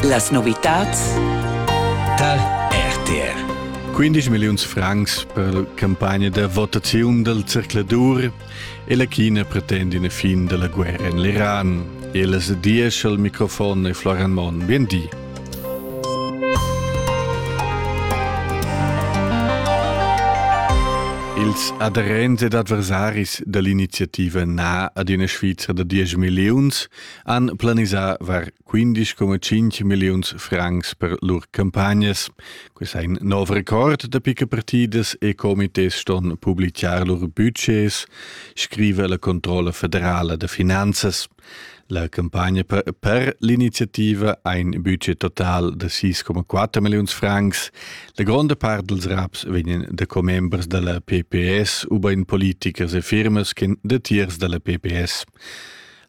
Las novitads tal RTR 15 milliuns francs per la campagna da votaziun dal zercladur e la China pretend ina fin da la guerra en l'Iran. E las diesch al microfon e Florian Monn. Bien di. Ils aderents ed adversaris da l'iniziativa Na ad una Svizra da 10 milliuns han planisà var 15,5 milliuns francs per lur campagnas. Quest è in nov record da picca partidas e comités ston publicar lur budgets, scrive la Controlla federala da finanzas. La campagna per, per l'iniziativa ha in budget total da 6,4 milliuns francs. La gronda part dels raps vegnan da commembers della PPS u ben politichers e firmas che datiers della PPS.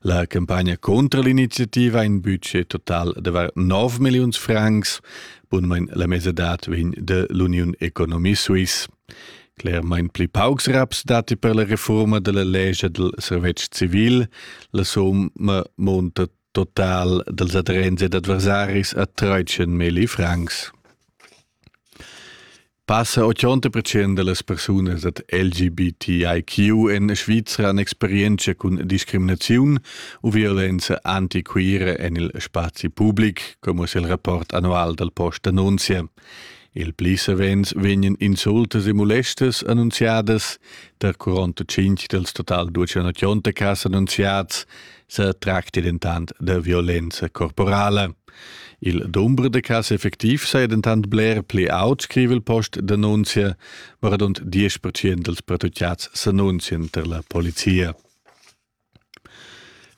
La campagna contra l'iniziativa in budget total de var 9 millions francs, bunmein la mesedat vegn de l'Union Economie Suisse. Clermain pli paucs raps dati per la reforma della legge del servetsch civil, la somma monta total dels adrense d'adversaris a 13 mili francs. Passa 80% dallas persunas ad LGBTIQ en Svizra han experienza cun discriminaziun u violenza antiquira en il spazi public, come es il rapport annual dal Post annunzia. Il pli savens vegnan insultas e molestas annunziadas, der 45 dals total 280 cas annunziats, se tracti dentant de violenza corporale. Il dumber de cas effectiv sei dentant bler pli aut, scrive il post denunzia, ma rund 10% dels protocciats s'annunzien ter la polizia.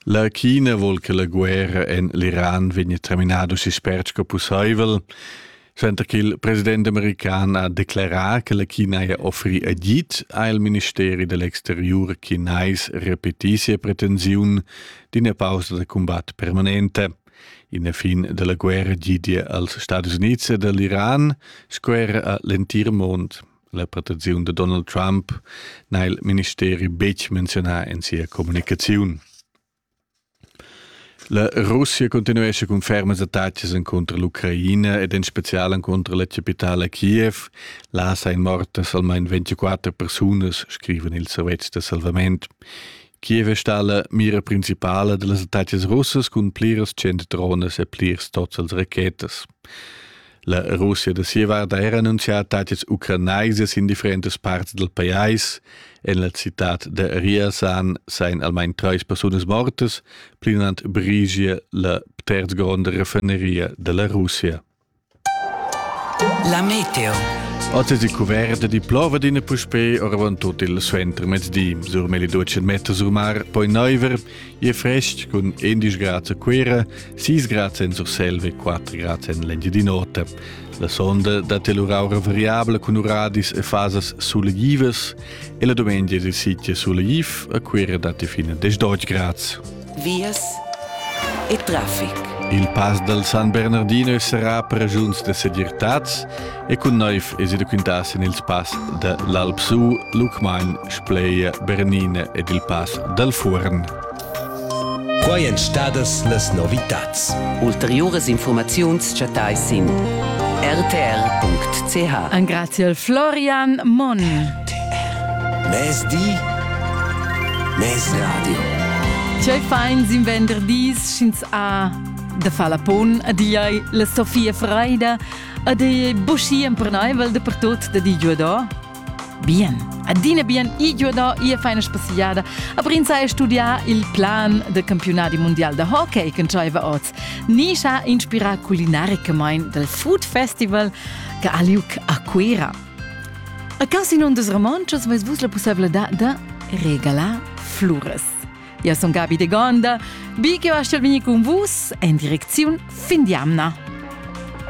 La China vol che la guerra en l'Iran vegni terminado si spert sco pusseivel. Senta che il president american ha declerà che la China ha offri agid, ha il ministeri dell'exterior chinais repetì sia pretensiun d'ina pausa da combat permanente. In fin della guerra gidia als Stati Uniti e dell'Iran sco era a l'entir mond. La pretensiun de Donald Trump n'ha il ministeri betg menzionà in sia communicaziun. La Russia continuescha cun fermas attacas encunter l'Ucraina ed en spezial encunter la chapitala Kiev. Là sain mortas almain 24 persunas, scrivan ils servetschs da salvament. Kiev è stà la mira principala da las attacas russas cun pliras cent dronas e plirs tots als rachetas. La Russia da sia vart ha era annunzià tatgs ucranais sin differentas parts dal pajais. En la citad da Riasan sain almain trais persunas mortas, plinant brigia la terzgronda raffineria da la Russia. La meteo. Oggi si coverta di plova d'ina puspè oravant tot il suenter mezdi. Sur meli duce metta sur mar, poi neuver, Je frest cun 11 grad a Cuira, 6 grad en Surselva e 4 grad en l'Engiadin'Ota. La sonda dat el uraura variabla cun uradis e fasas sulegivas e la domenica il sitio sulegiv a Cuira dat fino a 10 grad. Vias e traffic. Il pass dal San Bernardino sarà per ragiuns de segirtad E cun neiv es ida quintar sin ils pass da l'Alpsu, Lucmagn, Spleia, Bernine ed il pass dal Fuorn. Quai èn stadas las novitads. Ulteriuras informaziuns chattais sin rtr.ch. Engraziel Florian Monn. RTR. Mezdi, mez radio. Tgei fein sin venderdis sch'ins ha da far la pon a diai la Sofia Freida ed è buschi empernaivel da per tot da di giuador? Bien, adina bien i giuador ia faina spassiada, aber ins ha studià il plan del campionati mondial da hockey che entschaiva oz. Ni sa inspirà culinaricamain del Food Festival che ha liug a Cuera. A Casino des Romanchos vais vus la possibilità de regalar flures. Io sono Gabi de Gonda, vi che va a con vus in direzione fin di Amna.